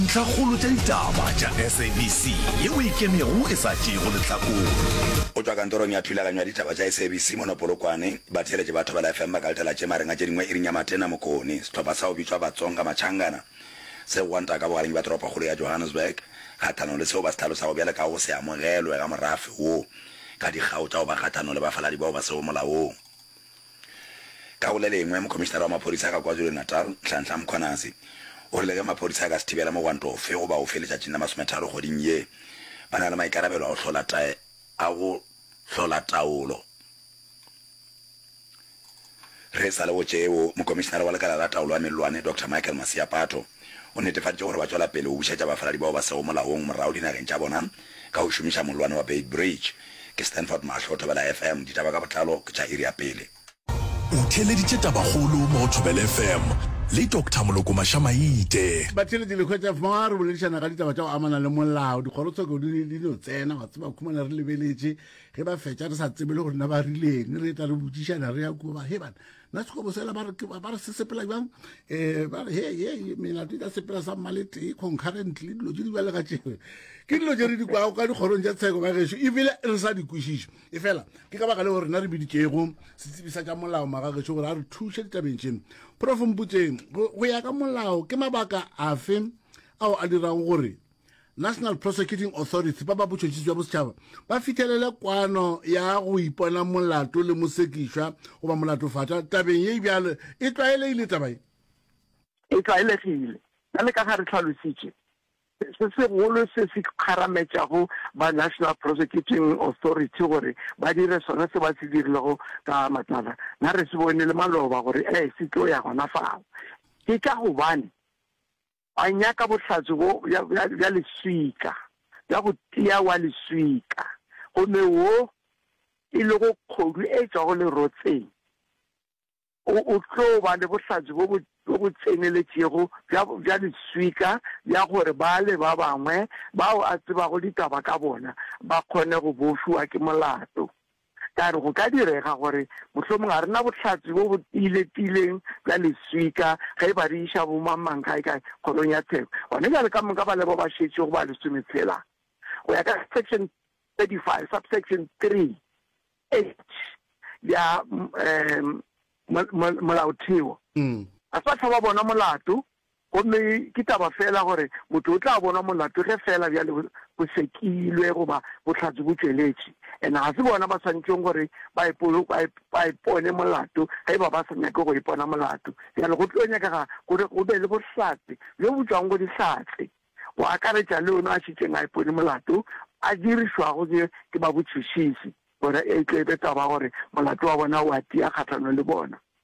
Ntlhakgolo tša ditaba tša SABC ye o e kemego e sa tšeego lehlakore. Go tšwa kantorong ya thulaganyo ya ditaba tša SABC mono Polokwane, batheeletši ba Thobela FM ba ka letela tše mareng a tše dingwe iring ya matena mokone. Sehlopha sa go bitšwa Batsonga Machangana se gwanta ka bogareng bja toropokgolo ya Johannesburg kgahlanong le seo ba se hlalosago bjale ka go se amogelwe ga morafe wo ka dikgao tša go ba kgahlanong le bafaladi bao ba sego molaong. Ka go le lengwe, Mokomišinara wa Maphodisa ka KwaZulu-Natal, Nhlanhla Mkhwanazi, o rile ge maphodisa a ka se thibele mogwanto ofe goba ofe letšatšing la masometharo kgweding ye, ba na le maikarabelo a go hlola ta a go hlola taolo. Re sa le go tšeo, Mokomišinara wa Lekala la Taolo ya Mellwane, Doctor Michael Maseapato, O netefaditše gore ba tšwela pele go bušetša bafaladi bao ba sego molaong morago dinageng tša bona ka go šomiša mollwane wa Beitbridge. Ke Stanford Mahlo, Thobela FM, ditaba ka botlalo ke tša iri ya pele. O theeleditše tabakgolo mo go Thobela FM le Doctor Moloko Maša-Maite. Batheeletši le hwetša fa re boledišana ka ditaba tša go amana le molao, dikgorotsheko di ne di no tsena, wa tseba, khumana re lebeletše, ge ba fetša re sa tsebe le gore na ba rileng, re etla re botšišana re ya kua, ba, Hee bana, na sekobo sela ba re se sepela jang um ba re he he melato e ka sepela sa mmaletee concurrently dilo tse di bjale ka tšebe ke dilo tse re di kwago ka dikgorong tša tsheko ba gešo ebile re sa di kwešiše e fela ke ka baka le gore rena re biditšego setsebisa tša molao maga gešo gore a re thuše ditabeng tšeng profomputseng go ya ka molao ke mabaka afe ao a dirago gore National Prosecuting Authority ba ba botšhotšhisi bja bosetšhaba ba fihlelele kwano ya go ipona molato le mosekišwa goba molatofatša tabeng ye bjalo e tlwaelegile taba ye e tlwaelegile bjale ka ga re tlhalositše se segolo se se kgarametšago ba National Prosecuting Authority gore ba dire sona se ba se dirilego ka matlala na re se bone le maloba gore e se tlo ya gona fao ke ka gobane Wa nyaka bohlatse bjo bja, bja, bja leswika, bja go tia wa leswika, gomme wo e lego kgodu e tšwago lerotseng, o, o tlo ba le bohlatse bjo bo, bjo bo tseneletšego bja, bja leswika, bja gore bale ba bangwe bao a tsebago ditaba ka bona ba kgone go bofiwa ke molato. Ka re, Go ka direga gore mohlomong ga re na bohlatse bjo bo tiiletileng bja leswika ge e ba re iša bomangmang kaekae Kgorong ya Tsheko. Gona bjale ka moka ba le bao ba šetšego ba lesometshela, go ya ka Section 35, Subsection 3H ya Molaotheo, ga se ba hlaba bona molato. Gomme ke taba feela gore motho o tla bonwa molato ge feela bjale bo, bo sekilwe goba bohlatse bo tšweletše. And ga se bona ba swanetšeng gore ba ipo, ba, ba ipone molato ge e ba ba sa nyake go ipona molato. Bjale go tlo nyakega gore go be le bohlatse bjo bo tšwago go Dihlatse, go akaretša le yono a šetšeng a ipone molato, a dirišwago ke, ke babotšhitšhisi, gore e tle e be taba ya gore molato wa bona o a tia kgahlanong le bona.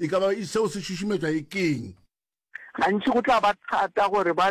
E ka ba seo se šušumetšwa e ke'ng? Gantši go tla ba thata gore ba.